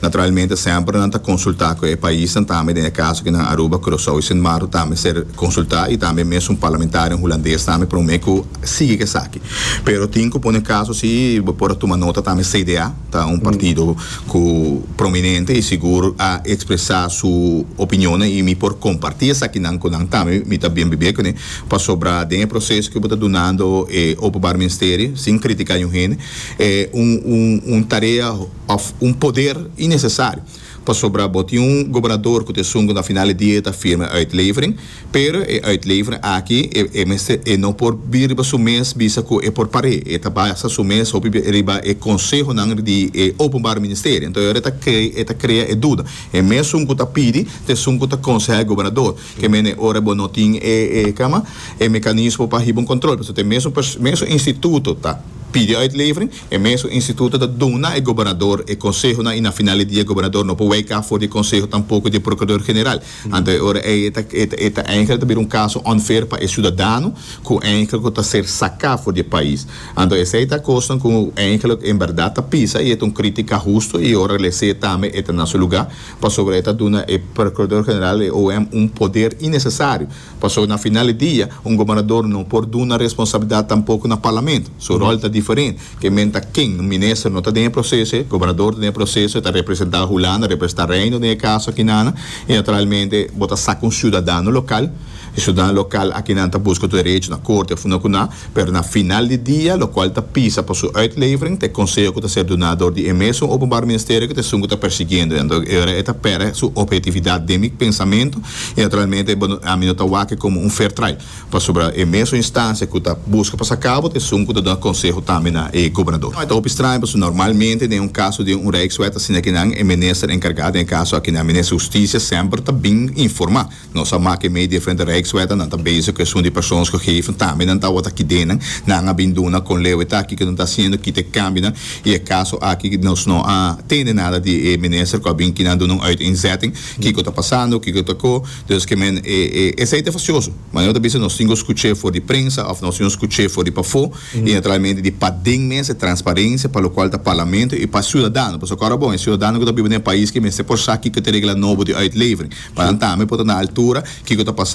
Naturalmente semper nan ta consulta cu e paisnan tambe, den e caso aki nan Aruba, Curaçao y Sint Maarten ta mester consulta y tambe mes un parlamentarionan Hulandes tambe prome cu sigui cu esaki. Pero tin cu pone caso si, bo por a tuma nota tambe CDA ta un partido cu prominente y sigur a expresa su opinionnan y mi por comparti esakinan cu nan tambe, mi ta bien bibia cune, pasobra den e proceso cu bo ta dunando e Openbaar Ministerie, sin critica año hende, e un tarea, òf un poder innesesario, pasobra bo tin un gobernador ku ta esun ku na final di dia ta firma e uitlevering, pero e uitlevering aki e e mester e no por bira riba su mes bisa ku e por par'é, e ta basa su mes hopi bia riba e konsehonan di e Openbare Ministerie. Anto e ora e ta e ta krea e duda. E mesun ku ta pidi ta esun ku ta konsehá e gobernador. Ke mene e ora bo no tin e e kama e mekanismo pa hiba un kontrol, pasobra te mesun pers mesun instituto ta pidi uitlevering, E mesun instituto ta duna e gobernador e consehonan y na final di dia e gobernador no por weka for di e conseho tampoco di e procurador general. Anto e ora ey e ta e ta e ta eindelijk ta bira un caso unfair pa e ciudadano cu eindelijk cu ta ser saca for di e pais. Anto esey ta cosnan cu eindelijk en berdad ta pisa y e ta un critica husto y ora lese tambe e ta na su lugar pasobra e ta duna e procurador general e OM un poder innecesario. Paso na final di dia, un gobernador no por duna responsabilidad tampoco na Parlament. Su rol ta diferent. Ke men ta ken? Un minister no ta den e proceso, e gobernador ta den e proceso, e ta representa Hulanda, representa Reino den e caso akinan. Y naturalmente bo ta saca un ciudadano local. E ciudadano local akinan ta busca tur derecho na corte of una cu nan. pero na final di dia, lokual ta pisa pa su uitlevering, ta e konseho ku ta ser duná dor di e mesun Openbaar Ministerio ku ta esun ku ta persigiendo e. E ora e ta pèrdè su ophetividat den mi pensamentu i naturalmente ami no ta wak e komo un fair trial, pasobra e mesun instansia ku ta buska pa sa kabo ta esun ku ta duna konseho tambe na e gobernador. Ta hopi straño pasobra normalmente den un kaso di un rijkswet asina kinan e minister enkargá den e kaso akinan, minister Hustisia, semper ta bin informá. Nos a mak'é mei diferente rijkswetten, nan ta bezig ku esun di persons ku geven, tambe nan tawata kidennan. Nan a bin duna kon leu eta aki ku nan ta hasiendo, kita e kambionan, i e kaso aki nos no a tende nada di e minister ku a bin kinan duna un uiteenzetting, kiko ta pasando, kiko ta ko. Dus ke men, e esei ta fasioso. Manera ku ta bisa nos tin ku skuch'é for di prensa òf nos tin ku skuch'é for di pafó. y naturalmente di paden mes e transparencia pa locual ta Parlamento y pa ciudadano, pasobra cu ora bon e ciudadano cu ta biba den e pais ki mester por sa kico ta e regla nobo di uitlevering pa nan tambe por ta na altura kico ta pasa.